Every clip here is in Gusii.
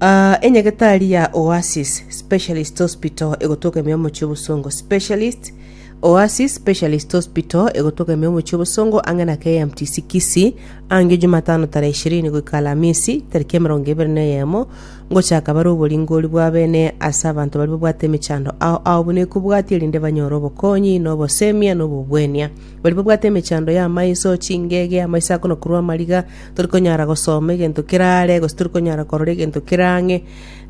Ah, enyagetari ya Oasis Specialist Hospital egotoka ime omochie obosongo Specialist Oasis Specialist Hospital egotoka ime omochie obosongo ang'e na KMTC Kisii ange Jumatano tarehe ishirini goika Alamisi tariki emerongo ebere na eyemo ngochaka bare oboringori bwa bene ase abanto baria babwate emechando ao ao buna ekobwati erinde banyore obokonyi na obosemia na obobwenia baria babwate emechando ya amaiso chingege amaiso akonokorwa amariga Tori konyara gosoma egento kerare, gose tori konyara korora egento kera ang'e.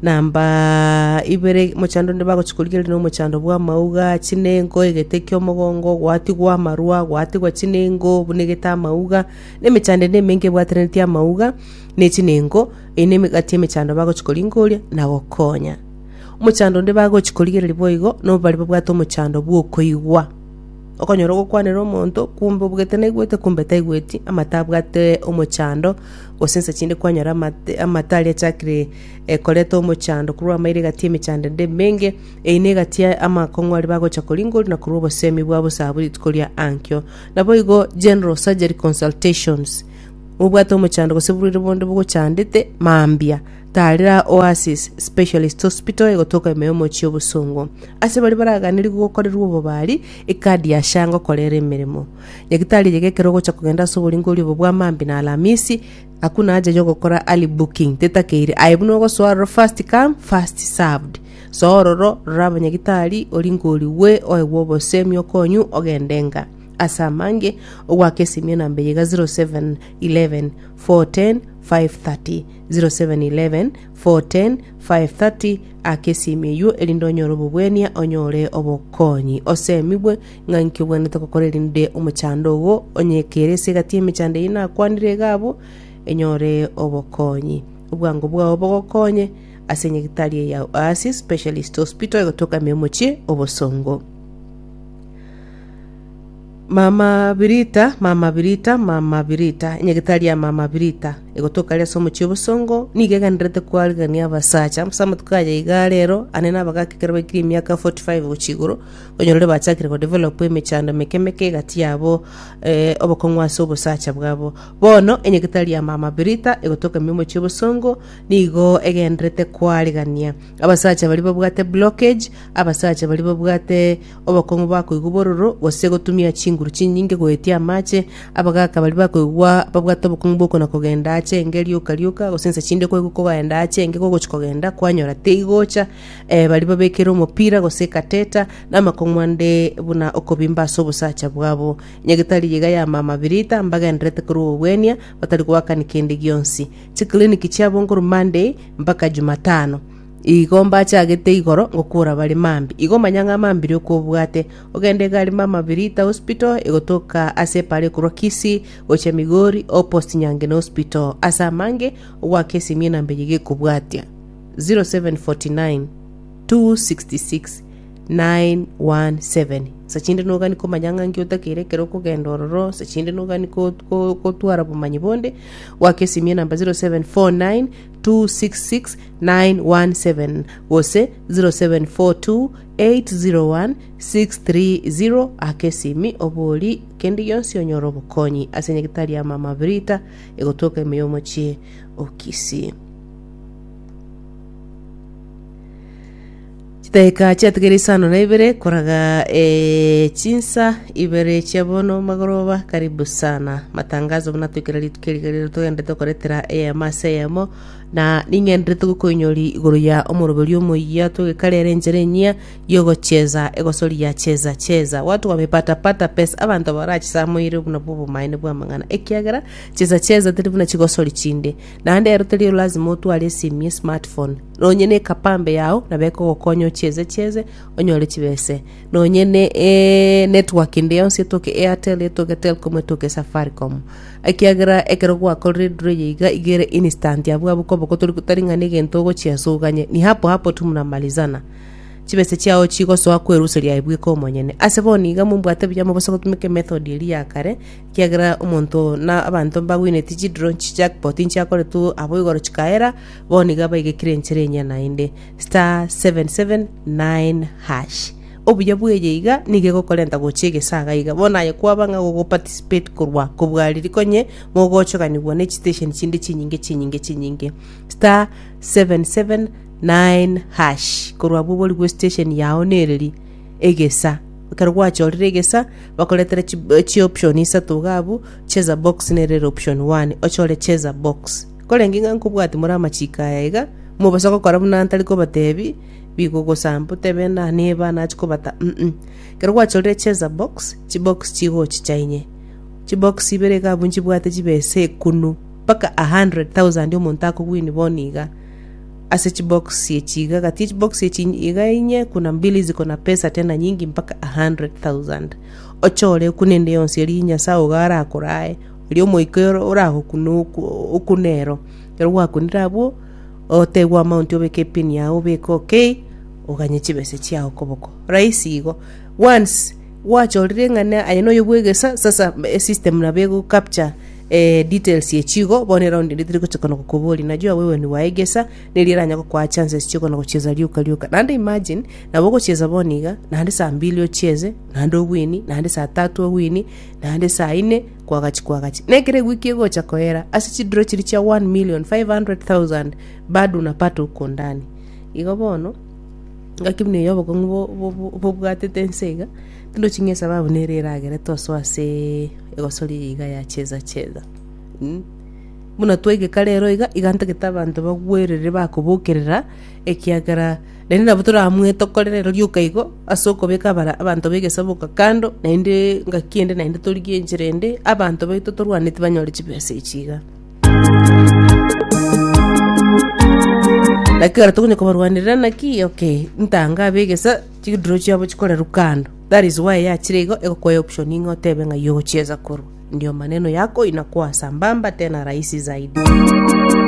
Namba ibere, mochando onde bagochia korigereria na omochando bw'amauga, chinengo, egete ki'omogongo, gwatigwa amarwa, gwatigwa chinengo, buna egete amauga, na emechando ende emenke ebwataneretie amauga ne chinengo, eye ne emegati y'emechando bagochia koringoria na gokonya. Omochando onde bagochia korigereria boigo, no baria babwate omochando bw'okoigwa. Okonyora ogokwanera omonto, kumbe obugete naigwete, kumbe taigweti, amatabwate omochando, gose inse chinde kwanyora amate- amato aria achakire eh, koreta omochando korwa amairo egati y'emechando ende emenge, eyio negati ya amakong'u aria bagocha koringoria na korwa obosemi bwabo saabo rituko ria ankio. Naboigo General Surgery Consultations, obwate omochando gose borwaire bonde bogochandete mambia, Taarera Oasis Specialist Hospital egotoka ime y'omochie obosongo. Ase baria baraganirigwe gokorerwa obobari, ekadi ya SHA ngokorera emeremo. Nyagitari eyega ekero ogocha kogenda ase oboringorio obo bwa maambia na alamisi, akwo nacha yogokora early booking, tetakeire aye buna ogosoa aroro first come, first served. Soa ororo, rora abanyagitari, oringorigwe, oegwe obosemi okonywe, ogende ng'a. Ase amange, ogoaka esimi enamba eyega 07 11 410 530. 0711 410 530 Aka esimi eyio, erinde onyore obobwania, onyore obokonyi, osemigwe ng'a inki obwenerete gokora erinde omochando ogo onyekere ase egati y'emechando eyio nakwanire iga abwo, enyore obokonyi. Obwango bwao bogokonye ase nyagitari eye ya Oasis Specialist Hospital egotoka ime omochie obosongo. Mama Birita, mama Birita, mama Birita, enyagetari ya mama Birita, egotoka aria ase omochie obosongo, nigo eganerete koarigereria abasacha, ase amatuko aya iga are ero, ane nabagaaka ekero baikire emiaka 45 gochia igoro, onye rore bachakire go develop emechando emeke emeke egati yabo, eh, obokong'u ase obosacha bwabo. Bono, enyagetari ya mama Birita, egotoka ime omochie obosongo, nigo egenderete koarigania abasacha baria babwate blockage, abasacha baria babwate Obokong'u bwa koigwa bororo, gose gotumia chinguru chinyinge goetia amache, abagaaka baria bakoigwa babwate obokong'u bw'okona-kogenda aache enge rioka rioka, gose inse chinde koigwa kogaenda aache enge kogochia kogenda, kwanyora teigocha, ee, baria babekire omopira gose ekateta, na amakong'u ande buna okobimba ase obosacha bwabo. Nyagetari yaiga yama amabirita, mbagendererete korwa obogwenia, batari goakani kende gionsi. Chikliniki chiabongorwa Monday mpaka Jumatano. Igo mbachagete igoro ngokora bare mambi. Igo manya ng'a mambire okobwate. Ogende egari mama Birita Hospital egotoka ase epara ekorwa Kisii gochia Migori o post Nyangena Hospital. Ase amange ogwaka esimi enamba eye gekobwatia 0749 266 917. Sachinde nogani komanya ng'a nki otakeire ekero okogenda ororo. Sachinde nogani ko- ko- kotwara obomanyi bonde. Gwaka esimi enamba 0749 266-917 gose 0742-801-630 ake esimi obori kende gionsi onyore obokonyi ase nyagetari ya mama Brita egotoka ime y'omochie o Kisii. Chidakika chiatigere isano na ibere koraga eh, chinsa ibere chia bono magoroba. Karibu sana matangazo buna twikere rituko eri riria togendete gokoretera eyemo ase eyemo na ning'enderete gokoinyori igoro ya omoroberio omoyia twegekarere enchera enyia yogocheza egosoria cheza cheza watu wamepata pata pesa abanto barachisamoire buna bwo obomaene bw'amang'ana ekiagera cheza cheza teri buna chigosori chinde naende ero teri lazima otware esimi esmartphone nonye ne ekapambe yao nabe ekogokonya ochieze chieze onyore chibese nonye ne eh, network ende yonsi etoke airtel etoke telcom etoke safaricom ekiagera ekero gwakorire eduru eye iga igere instant abwo abwo koba kotori kotari ng'a negento ogochia ase oganye ni hapo hapo tu mnamalizana chibese chiao chigosoa kweruseria aye bweka omonyene ase bono iga mombwate buya mobose gotumeka emethod eri ya kare ekiagera omonto na abanto mbagwenereti chidro chijackpot nchiakoretwe abo igoro chikaera Bono nigo abaigekire enchera enyia naende, *779#. Obuya bw'eye iga nigo egokorenta gochia egesaga iga. Bono aye kwaba ng'a gogoparticipate korwa kobwariri konye mogochoganigwa ne chitesheni chinde chinyinge chinyinge chinyinge, *779#. Korwa abwo borigwe station yao nereri egesa. Ekero gwachorire egesa, bakoretera chi- chioption isato iga abwo, cheza box nere ere option one, ochore cheza box. Korende ng'a nkobwati more amachiiko aya iga, mobose gokora buna ntari kobatebi, bigogosamba, otebe na neba nachi kobata, mm. Ekero gwachorire cheza box, chibox chigo ochicha inye. Chibox ibere iga abwo nchibwate chibesa ekunu, mpaka a hundred thousand omonto akowin bono iga, ase chibox echi iga. Gati echibox echi in- iga inye kuna mbili ziko na pesa tena nyingi mpaka a hundred thousand. Ochore ekuna ende yonsi eria Nyasae ogo arakora aye, Erio omoika ere oragokune oku- okune ero. Ekero gwakunire abwo, otegwe amaunti obeke epin yago obeke okay, oganye chibese chiago koboko. Rahisi igo. Once gwachorire ng'a na aye noyo bwegesa, sasa esystem nabo ego capture eh details echio igo, bono eraundi ende teri gochia konya kokoboria, najua wewe ni wa egesa, neri eranya gokoa chances chio konya gochiesa rioka rioka. Naende imagine, nabo ogochiesa bono iga, naende saa mbili ochiese, naende obwenie, naende saa tatu obwenie. naende saa ine kwagachi kwagachi, na ekero ewiki egocha koera, ase chidiro chiria chia 1,500,000 badu na pata okondania. Igo bono, ngaki buna eyo obokong'u bo- bo- bo- bobwatete ense iga, tindochi ng'a esababu nere eragere tosoa ase egosoria eye iga ya cheza cheza. Mh, buna twaigeka rero iga, iga ntagete abanto bagwerere bakobokerera, ekiagera. Naende nabo toramwetokorere rioka igo, ase okobeka abare abanto b'egesaboka kando, naende ngaki ende naende torigie enchera ende, abanto baito torwaneti banyore chibesa echi iga. Naki ekero tokonya kobarwanerera naki okay, ntange abe egesa, chiduro chiabo chikorerwa kando. That is why yachire igo egokoe option ng'a otebe ng'ai ogochiesa korwa. Ndio maneno yako inakuwa sambamba tena rahisi zaidi.